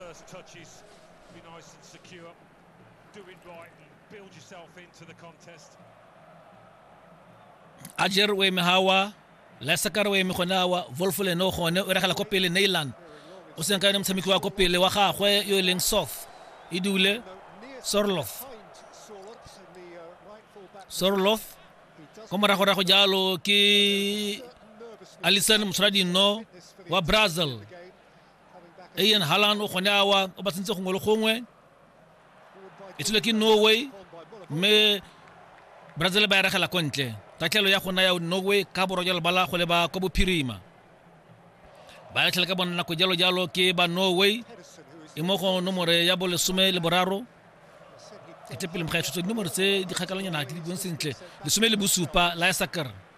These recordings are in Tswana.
First touches, be nice and secure, do it right and build yourself into the contest. ajer o eme gawa lesakar o eme gone awa volfo lene o gone o regela ko pele nailan o seng ka yone motshameki wa ko pele wa gagwe yo e leng soth e dule sorloth sorloth ko moragorago jalo ke alison motshwara dinno wa brazil Ian Halland o gone awa o ba tsentse gongwe le gongwe e tsile ke norway mme brazil ba eregela ko ntle tatlhelo ya gona ya norway ka borwa jalo ba la go leba kwa bophirima ba latlhela ka bona nako jalo jalo ke ba norway e mo go nomore ya bolesome le boraro ketepele mokga ya tshotseng dinomoro tse di kgakalanyana di le bong sentle lesome le bosupa la ya sakara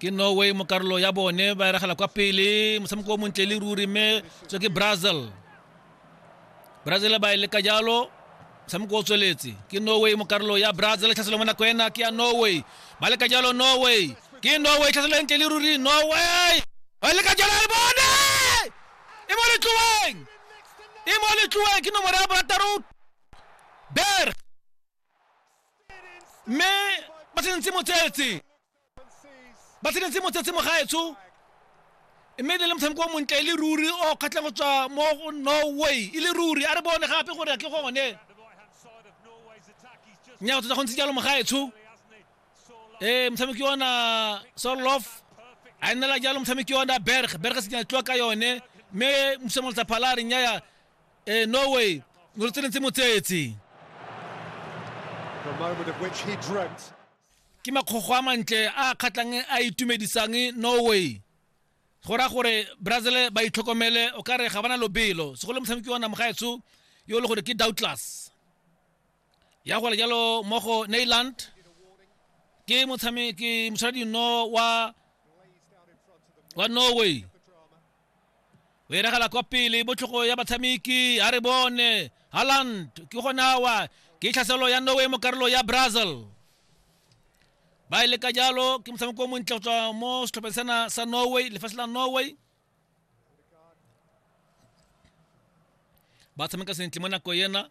ke norway mo karolo ya bone ba eragela kwa pele motshameko o montle le ruri mme tswe ke brazil brazil ba e leka jalo motshameko o tsweletse ke norway mo karolo ya brazil tlhaselo mo nako ena ke ya norway ba leka jalo norway ke norway tlhaselo e ntle le ruri norway ba leka jalo le bone e mo letloeng e mo letloeng ke nomoro ya barataro ber mme ba tsenentse motsetse ba tsenentse motsetse mogaetsho mme le le motshameko o montle e le ruri o kgatlhang go tswa mo go norway e le ruri a re bone gape gore ke gone nnyao tota go ntse jalo mogaetsho ee motshameki ona solof a nnela jalo motshameki ona berg berg se tlo ka yone mme mosemolotsa phala a re nnyaya eh, norway ni urutsinitsi motsetsi The moment of which he dreamt. ke makgogo a mantle a a kgatlhang a itumedisang norway go raya gore brazil ba itlhokomele o ka re ga bana lobelo segolo motshameki wa namogaetsho yo e le gore ke doubtless ya gore jalo mo go neyland ke motshameki moshwara dino wa wa norway o iragala kwa pele botlhogo ya batshameki a re bone haland ke gone awa ke tlhaselo ya norway mo karolo ya brazil ba e leka jalo ke motshameko o montle go tswa mo setlhopheng sena sa norway lefatshe la norway ba tshameka sentle mo nako ena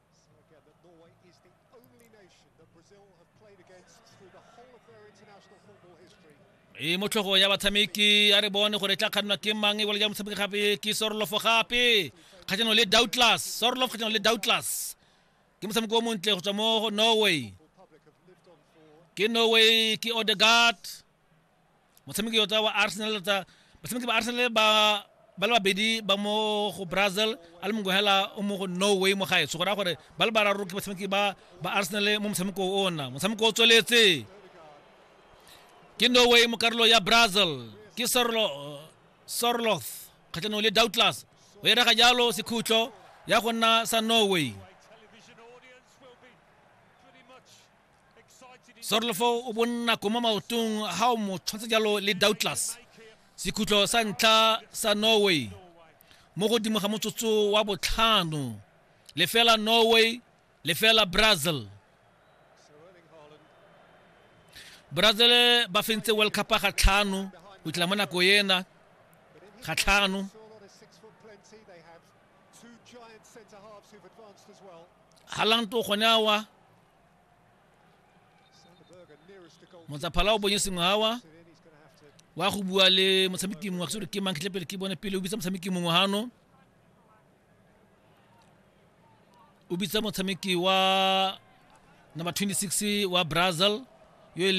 e motlhogo ya batshameki a re bone gore e tla kgannwa ke mang e ya motshameki gape ke sorolofo gape kgatlhanong le doubtless sorolof kgatlhanong le doubtless ke motshameko o montle go tswa mo norway ke norway ke odegard motshameki yo wa arsenal tsa batshameki ba arsenal ba ba le babedi ba mo go brazil a le mongwe hela o mo go norway mo gaetsho go raya gore ba le bararo ke batshameki ba ba arsenal mo motshameko o ona motshameko o tsweletse ke norway mo karolo ya brazil ke sorloth kgatlhanong le doubtless o e rega jalo sekhutlo ya go nna sa norway sorolofo o bonna ko mo maotong ga o mo tshwantsha jalo le doubtless sekhutlo sa ntlha sa norway mo godimo ga motsotso wa botlhano lefela norway lefela brazil brazil ba fentse world cup ga tlhano go tla mo nako ena ga tlhano galang to gone awa motsaphala o bonye sengwawa wa go bua le motshameki mongwe gore ke mang pele ke bone pele o bitsa motshameki mongwe gano o bitsa motshameki wa number 26 wa brazil